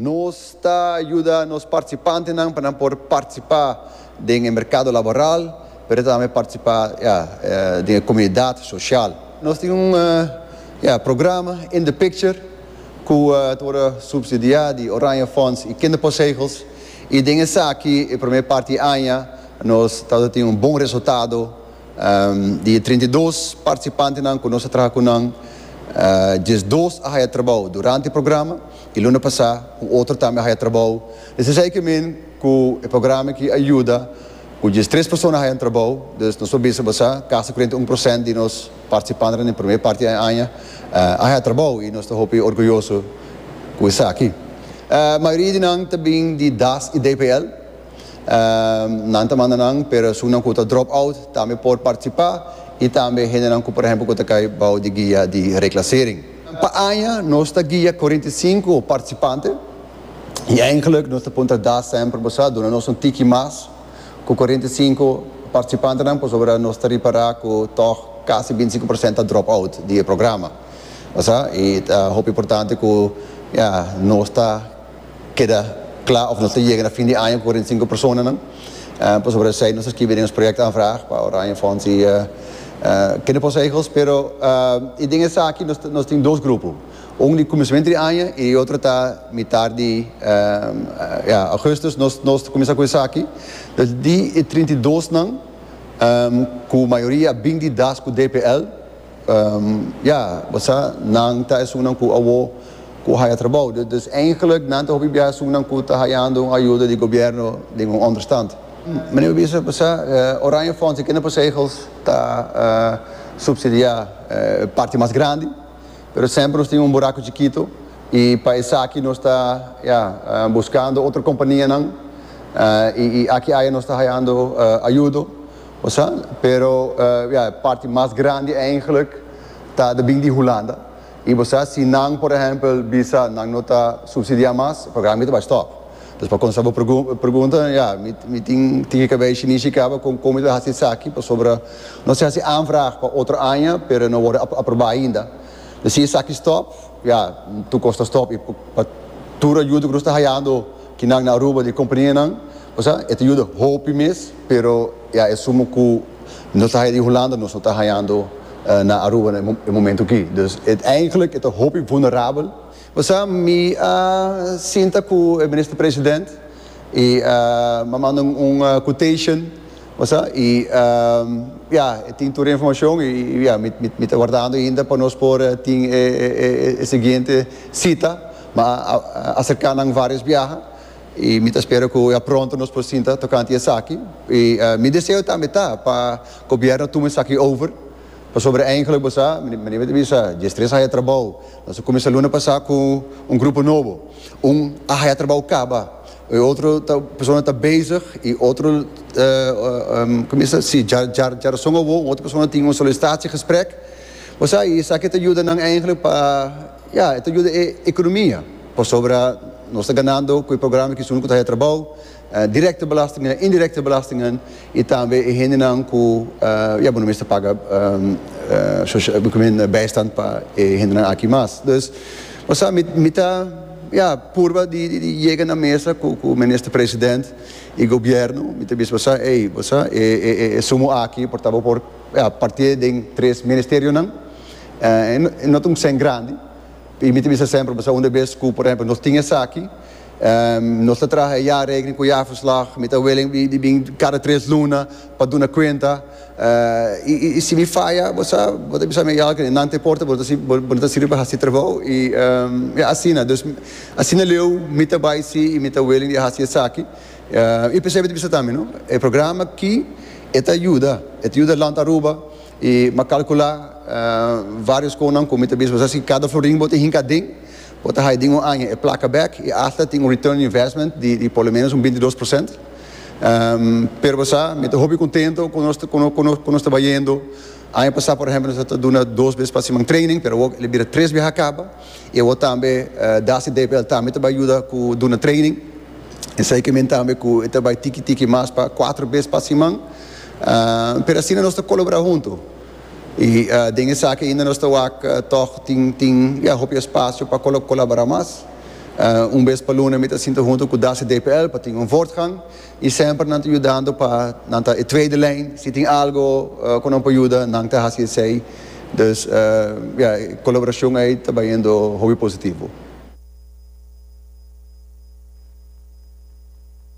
Nos ta yuda nos participantenan pa nan por participa den e mercado laboral, pero tambe participa den e comunidad social. Nos tin un programa In the Picture cu ta worde subsidia di Oranje Fonds y Kinderpostzegels y den esaki e primer parti aña nos ta tin un bon resultado. Di e trinta i dos participantenan cu nos a traha cu nan diesdos a haya trabao durante e programa. I luna pasá un otro tambe a haya trabou. Desa esei ke men ku e programa aki a yuda ku dies tres persona haya un trabou. Dus nos por bisa basá kasi kurenta un prosènt di nos partisipantenan den promé parti e aña a haya trabou i nos ta hopi orguyoso ku esaki. Mayoria di nan ta bin di das i DPL. Nan ta manda nan pero esun nan ku ta drop out tambe por partisipá i tambe hendenan ku por ehèmpel ku ta kai bou di guia di reklasering. Pa aña nos ta guia cuarenta i sinku participante y eigenlijk nos ta puntra da semper boso a duna nos un tiki mas cu cuarenta i sinku participantenan pasobra nos ta ripara cu tog casi binti i sinku procent ta drop out di e programa boso a y ta hopi importante cu nos ta keda kla of nos ta yega na fin di aña ku kuarenta i sinku personanan. Pasobra esei nos ta skibi den nos projèktaanvraag pa Oranje Fonds i Kinderposegels. Pero i den esaki nos tin dos grupo, un di kuminsamentu di aña i e otro ta mitar di Augustus nos ta kuminsá ku esaki. Pues di e trinta i dosnan ku mayoria a bin di das ku DPL. Ya, bo sa, nan ta esunnan ku awo ku haya trabou. Dus eigenlijk, nan ta hopi bia esunnan ku ta hayando un ayuda di gobièrnu den un onderstand. Meneer bo bisa, bo sa, Oranje Fonds i kende posegels ta supsidiá e parti mas grandi, pero semper nos tin un buraku chikito i pa esaki nos ta, ya, buskando otro kompanianan i aki aya nos ta hayando ayudo. Osa, pero ya e parti mas grandi eigenlijk ta de bin di Hulanda. I bo sa si nan por ehempel bisa nan no ta subsidia mas, e programa mi ta bai stop. Dus pa contesta bo pregunta, ya mi tin tin ke cabei shini shi caba con con mi ta bay haci esaki pasobra no se haci aanvraag pa otro aña pero e no worde aproba ainda. Dus si esaki stop, ya tur cos ta stop i pa tur ayuda cu nos ta hayando kinan na Aruba di compania nan, Osea, e ta yuda hopi mes, pero i a esumo ku nos ta haya di Hulanda, nos no ta hayando na Aruba na e momento aki. Dus, uiteindelik e ta hopi vulnerabel. Osea, mi a sinta ku e Minister-President i m'a manda un quotation, osea, i ya, e tin tur e informashon i ya, mi ta wardando ainda pa nos por tin e siguiente sita. Mi a aserká nan vários biaha. Y mi ta spera cu ya pronto nos por sinta tocante esaki. Y mi deseo tambe ta pa Gobierno tuma esaki over, pasobra eigenlijk bo sa, meneer Wit a bisa, dje stres a haya trabao. Nos a cuminsa luna pasa cu un grupo nobo. Un a haya trabao caba, e otro ta, persona ta bezig y otro, como es ta, si, dja, dja, dja rason awor un otro persona tin un solicitatie gesprek. Bo sa, y esaki ta yuda nan eigenlijk pa. Ya, e ta yuda e economia, pasobra nos ta ganando cu e programa kies uno cu ta haya trabao, directe belastingnan, indirecte belastingnan, y tambe e hendenan cu, ya, bo no mester paga bijstand pa e hendenan aki mas. Dus, bo sa, mi, mi ta, ya, purba di, di yega na mesa cu, cu Minister President y Gobierno, mi ta bisa bo sa, ey, bo sa, e, e, e sumo aki por ta, bo por, ya, partié den tres ministerionan. E no ta un sèn grandi. I mi ta bisa semper pasobra unda bes ku por ehempel nos tin esaki, nos ta traha e jaarrekening ku jaarverslag, mi ta willing di bin kada tres luna pa duna kuenta. I si mi faya, bo sa, bo ta bisa mi, Eyal, ke nan ta importa, bo no ta sirbi pa hasi trabou. I ya asina. Dus, asina leu mi ta bai si i mi ta willing di hasi esaki. I p'esei mi ta bisa tambe, no, e programa aki e ta yuda, e ta yuda Land Aruba. I m'a calcula varios conan cu mi ta bisa, Sabes ki, cada florin cu bo ta hinca aden, bo ta haya den un aña e placa bek i asta tin un return on investment di por lo menos un bintidos por cent. Pero bo sa, mi ta hopi contento cu nos, cu nos ta bayendo. Aña pasa, por ehempel, nos a ta duna dos bes pa siman training, pero awor el a bira tres bes a caba. I awor tambe Dasi DPL tambe ta bay yuda cu duna training. Esey ke men tambe cu e ta bay tiki tiki mas pa cuatro bes pa siman. pero asina nos ta colaborá hunto. Y den esaki ainda nos ta wak tog tin tin ya hopi espacio pa colaborá mas. Un bes pa luna mi ta sinta hunto cu Dace DPL pa tin un voortgang y semper nan ta yudando pa nan ta e tweede lijn, si tin algo cu nan por yuda nan ta haci esey. Dus ya e colaboracion ey ta bayendo hopi positivo.